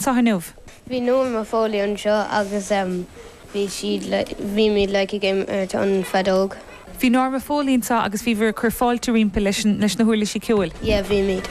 Sa Chnamh. Bhí Norma Foley anseo agus bhí siad le, bhí mé like a game ar an feadóg. Bhí Norma Foley anseo agus bhíobhair ag cur fáilte roimpi leis an, leis na huirlisí ceoil. Yeah, bhímid.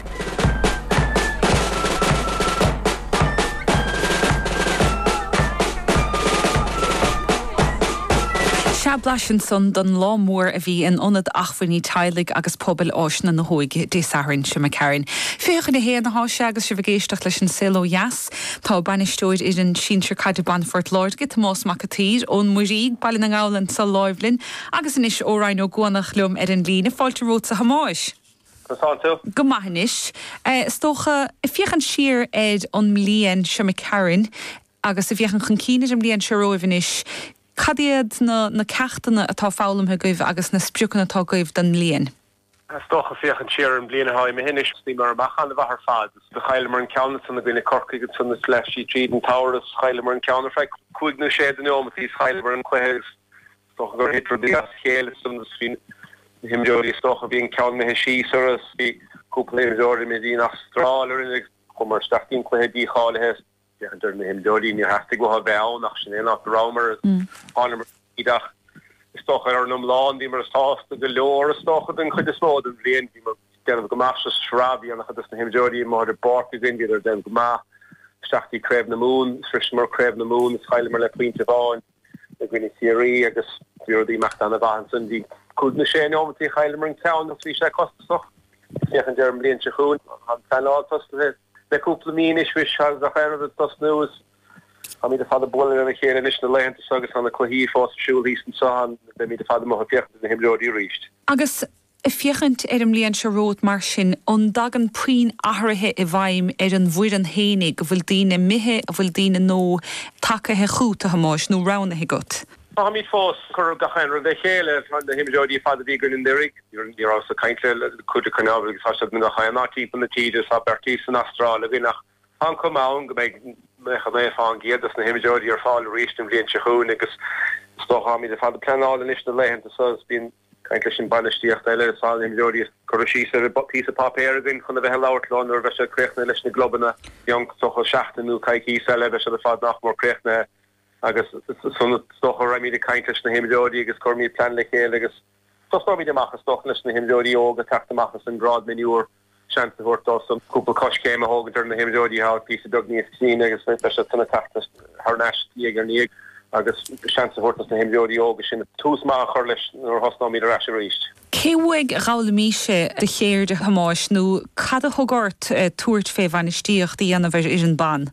Sea, blaiseadh ansan don lá mór a bhí in Ionad Achmhainní Teaghlaigh agus Pobail Áiseanna na hÓige Dé Sathairn seo a d'imigh tharainn. Fiche chun a haon atá sé agus sibh ag éisteacht leis an Saol Ó Dheas. Tá Bainisteoir Fhoireann Sinsir Caide Ban Phort Láirge, Tomás Mac an tSaoir, ón Muiríoch, Baile na nGall ansa Ghaoluinn agus anois ó Rinn Ó gCuanach liom ar an líne. Fáilte romhatsa a Thomáis. Go saolaí tú. Go maith anois, is dócha. Ag féachaint siar ar an mbliain seo a d'imigh tharainn agus ag féachaint chun cinn ar an mbliain seo romhaibh anois, cad iad na ceachtanna atá foghlamtha agaibh agus na spriocanna atá agaibh don mbliain? Is dócha, féachaint siar ar an bhliain atá imithe anois, thosnaíomar amach ana-mhaith ar fad. Chailleamar an ceann ansan i gcoinne Corcaigh ansan is leath slí tríd an tsamhraidh is. Chailleamar an ceann ar feadh cúig nó sé de neomataí is chailleamar an cluiche agus is dócha gur thit rudaí as a chéile ansan is bhí na himreoirí, is dócha, bhí an ceann imithe síos orthu is bhí cúpla imreoir imithe dínn an Astráil is raghainn go mbíomar isteach go dtí an cluiche dícháilithe. Dar leis na himreoirí, Níor theastaigh uathu a bheith ann ach sin é an áit a rabhamar. Tháingamar tríd ach is dócha ar an iomlán bhíomar sásta go leor is dócha don chuid is mó den bhliain. Bhíomar ag déanamh go maith sa tsraith, bhí ana-chuid dos na himreoirí amuigh ar an bpáirc againn, bhíodar ag déanamh go maith. Isteach go dtí Craobh na Mumhan, shroiseamar Craobh na Mumhan is chailleamar le pointe amháin. i gcoinne Chiarraí agus bhí rudaí ag imeacht ana mhaith ansan. Bhí cúig nó sé neomataí a chailleamar an ceann ann agus bhí sé costasach féachaint ar an bhliain seo chugainn. Tá an pleanáil tosaithe le cúpla mí anois is agus gach aon rud ag tosnú is táimíd ar fad ag bualadh lena chéile anois na laethanta so agus tá na cluichí fós ar siúl thíos anso ach beimíd ar fad amuigh ag féachaint ar na himreoirí arís. Agus Ag féachaint ar an mbliain seo romhat mar sin, an dtagann puinn athraithe i bhfeidhm ar an bhfoireann fhéinig, an bhfuil daoine imithe, an bhfuil daoine nua tagaithe chút, a Thomáis, nó roghnaithe agat? Táimid fós ag cur gach aon rud le chéile is na himreoirí ar fad a bhí againn anuraidh. Ní rabhas ag caint le cuid acu mar tá siad i ngach aon áit timpeall na tíre. Tá beirt san Astráil againn ach tá an chuma ann go mbeidh naocha naoi fá an gcéad dos na himreoirí ar fáil arís an bhliain seo chugainn agus is dócha táimid ar fad ag pleanáil anois na laethanta so is bíonn Caint leis an bainistíocht eile is tá na himreoirí curtha síos ar phíosa páipéir againn chun a bheith ag labhairt leo nuair a bheidh siad críochnaithe leis na gclubanna. I gcionn is dócha seachtain nó coicíos eile bheidh siad ar fad nach mór críochnaithe agus ansan is dócha raghaimid ag caint leis na himreoirí agus cuirfimid plean le chéile agus tosnóimid amach is dócha leis na himreoirí óga teacht amach as an grád mionúr. seans a thabhairt dósan cúpla coiscéim a thógaint ar na himreoirí, athá píosa beag níos sine agus iad san ag teacht thar n-ais diaidh ar ndiaidh agus seans a thabhairt dos na himreoirí óga sin tús maith a chur leis nuair a thosnóimid ar ais arís. Cé uaidh a dh'fhoghlaimís do cheird, a Thomáis, nó cad a thug ort tabhairt fé bhainistíocht a dhéanamh ar fhoireann ban?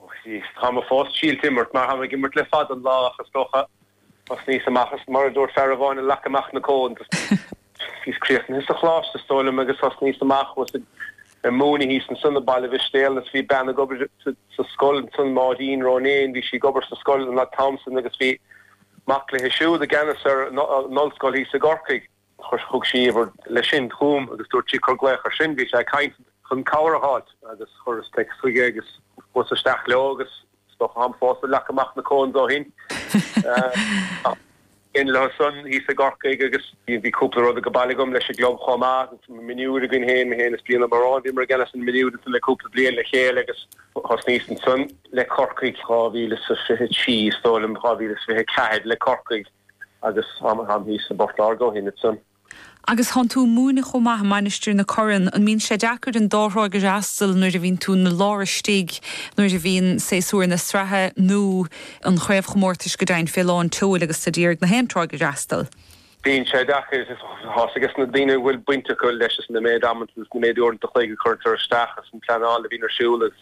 Ó is táim fós ag imirt, mar táim ag imirt le fada an lá ach is dócha thosnaíos amach is mar a dúirt fear amháin ag leagadh amach na cones, bhíos críochnaithe sa choláiste is dóigh liom agus thosnaíos amach chuas ag múineadh thíos ansan i mBaile Mhistéala is bhí bean ag obair sa scoil ansan, Máirín Ronayne, bhí sí ag obair sa scoil an t-am san agus bhí mac léithe siúd i gceannas ar an ollscoil thíos i gCorcaigh. Thug sí uimhir leis sin chugam agus dúirt sí cur glaoch air sin. Bhí sé ag caint chun cabhair a fháilt agus chuireas teics chuige agus chuas isteach leo agus is dócha táim fós ag leagadh amach na cones ó shin. Bhínn leo san thíos i gCorcaigh agus bhí cúpla rud age baile agam leis an gclub chomh maith. Mionúir againn féin, mé féin is Brian Ó Bearáin, bhíomar i gceannas ar na mionúir le cúpla bliain le chéile agus thosnaíos ansan le Corcaigh 2023 is dóigh liom, 2024 le Corcaigh. Agus táim thíos i bPort Láirge ó shin ansan. Agus thánn tú a múineadh chomh maith i Mainistir na Corann, an mbíonn sé deacair an dá thráigh a fhreastal nuair a bhíonn tú 'na lár istigh, nuair a bhíonn séasúr na sraithe nó an chraobhchomórtais go deimhin fé lán tseoil agus tú d'iarraidh na haon tráigh a fhreastal? Bíonn sé deacair, tá a fhios ages na daoine a bhfuil baint acu leis is an méid ama atá is an méid uaireanta an chloig a cuirtear isteach is an pleanáil a bhíonn ar siúl is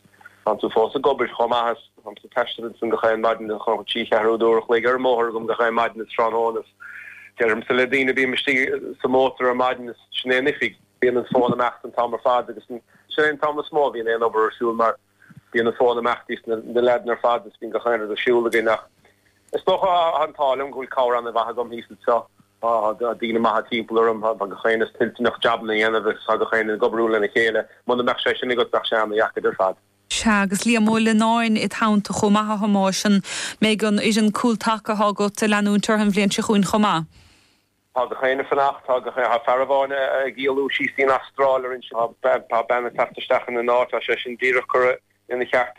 thánn tú fós ag obair chomh maith is Táimse ag taisteal ansin gach aon mhaidin, chothódh trí cheathrú uair a chloig ar an mbóthar agam gach aon mhaidin is tráthnóna is deirimse le daoine, bím istigh sa mhótar ar maidin is sin é an oifig. Bíonn an fón ag imeacht an t-am ar fad agus sin é an t-am is mó a bhíonn aon obair ar siúl mar bíonn an fón ag imeacht is na leaideanna ar fad is bíonn gach aon rud ar siúl againn ach is dócha an t-ádh liom go bhfuil cabhair an-mhaith agam thíos anseo, tá daoine maithe timpeall orm, tá gach éinne toilteanach jabanna a dhéanamh is tá gach éinne ag obair lena chéile, muna mbeadh sé sin agat bheadh sé an-deacair ar fad. Sea, agus Liam Ó Lionnáin id theannta chomh maith, a Thomáis. An mbeidh an fhoireann cúltaca athá agat a leanúint orthu an bhliain seo chugainn chomh maith? Tá gach éinne ag fanacht. Tá aon fhear amháin ag éalú síos dtí'n Astráil, orainn. Tá bean ag teacht isteach ina n-áit. Tá sé sin díreach curtha ina cheart.